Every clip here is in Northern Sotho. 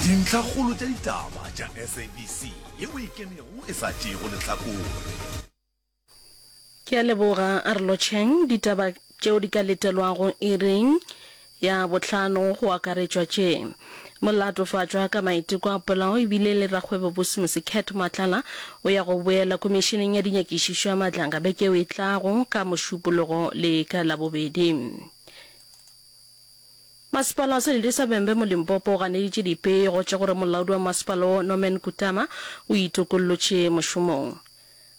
Dintlhakgolo tša ditaba tša SABC ye o e kenego e sa tšeego lehlakore. Ke a leboga Arlocheng. Ditaba tšeo di ka letelwago iring ya bohlano go akaretšwa tše, Mo latofatšwa ka maiteko a polao e bile le rakgwebo bosi Mose Cat Matlala o ya go boela Komišeneng ya Dinyakišišo ya Matlanga beke eo e tlago ka Mošupologo le ka Labobedi. Masepala Selili sa Bembe mo Limpopo o ganeditše dipego tša gore molaodi wa masepala wo Norman Kutama o itokollotše mošomong.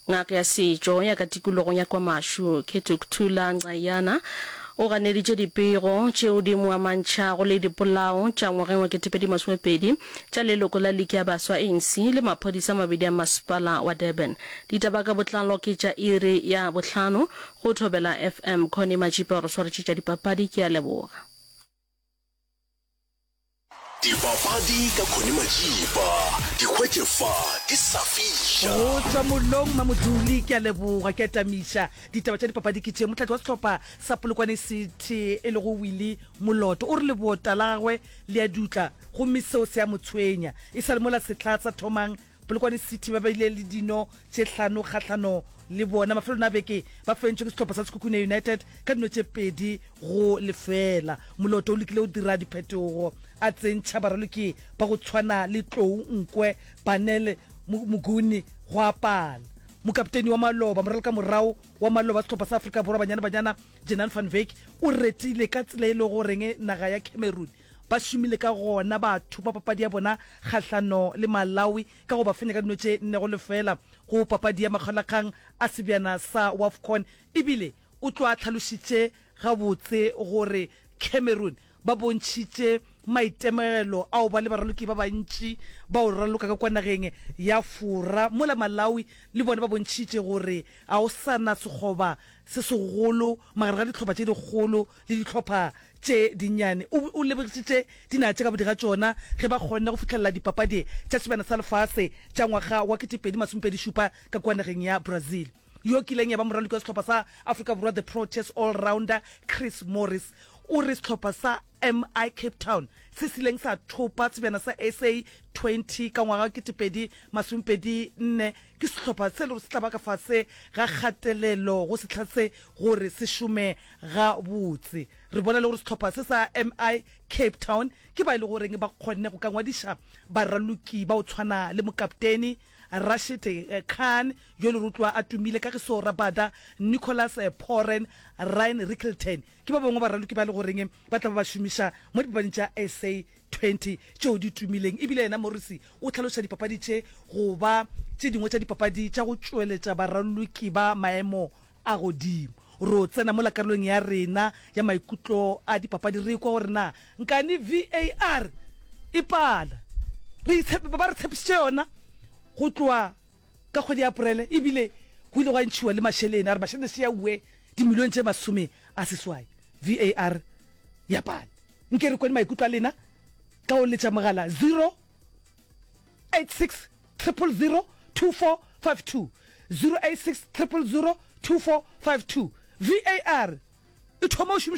Ngaka ya setšo ya ka tikologong ya KwaMashu, Kethukuthula Nxayana o ganeditše dipego tšeo di mo amantšhago le dipolao tša ngwageng wa ketepedi masomepedi tša leloko la liki ya baswa, anc, le maphodisa a mabedi a masepala wa Durban. Ditaba ka botlalo ke tša iri ya bohlano Go Thobela FM, Connie Matšipa o re swaretše tša dipapadi, ke a leboga. Dipapadi ka Connie Matšipa, di hwetše fa di sa fiša. Go tšwa mollong Mamoduli, ke a leboga, ke a tamiša. Ditaba tša dipapadi ke tše, motlatši wa sehlopha sa Polokwane City e lego Willie Moloto o re leboota la gagwe le a dutla gomme seo se a mo tshwenya e sa le mola sehla sa thomang Polokwane City ba beile le dino tše hlano kgahlano le bona. Mafelelong a beke ba fentšwe ke sehlopha sa Sekhukhune United ka dino tše pedi go lefela. Moloto o lekile go dira diphetogo a tsentšha baraloki ba go tshwana le Tlou Nkwe, Banele Moguni gwa pala mokapteini wa Maloba. Moralkamorago wa Maloba wa sehlopha sa Afrika Borwa Banyana Banyana, Jenan van Wyk o retile ka tsela e lego goreng naga ya Cameroon Ba šomile ka gona ba thoma papadi ya bona kgahlano le Malawi ka go ba fenya ka dino tše nne go lefela go papadi ya makgaolakgang a sebjana sa Wafcon ebile o tlo a hlalošitše gabotse gore Cameroon ba bontšhitše maitemogelo a go ba le baraloki ba bantši ba go raloka ka kwa nageng ya Fora mola Malawi le bona ba bontšhitše gore ga go sa na sekgoba se segolo magareng ga dihlopha tše dikgolo le dihlopha tše dinnyane. O be o lebogišitše dinaga tše gabodi ga tšona ge ba kgonne go fihlelela Dipapadi tša Sebjana sa Lefase tša ngwaga wa 2027 ka kua nageng ya Brazil. Yo kileng ya ba moraloki wa sehlopha sa Afrika Borwa, the Proteas all-rounder Chris Morris, o re sehlopha sa MI Cape Town se sileng sa thopa Sebjana sa SA 20 ka ngwaga wa 2024 Ke sehlopha se e lego se tla ba ka fase ga kgatelelo go sehla se gore se šome gabotse. Re bona le gore sehlopha se sa MI Cape Town ke ba e lego goreng ba kgonne go ka ngwadiša baraloki ba go tshwana le mokapteni Rashid Khan yo e lego gore o tloga a tumile ka ge se o rabada Nicholas Pooren, Ryan Rickelton ke ba bangwe ba baraloki ba e lego goreng ba tla ba ba šomiša mo dipapading tša SA 20 tšeo di tumileng e bile yena Morrissey o hlaloša dipapadi tše go ba tše dingwe tša dipapadi tša go tšweletša baraloki ba maemo a godimo. Ro tsena mola karolong ya rena ya maikutlo a dipapadi re ikwa gore na nkane VAR e pala re itshepe ba ba re tshepišitše yona go tloa Ka kgwedi ya Aporele e bile go ile gwa ntšhiwa le mašelene a re mašelene se ya ue dimilione tše masome a seswai VAR ya pale. Nke re kweni maikutlo a lena ka go letša mogala 086 000 2452, 086 000 2452. VAR e thoma go šomišwa.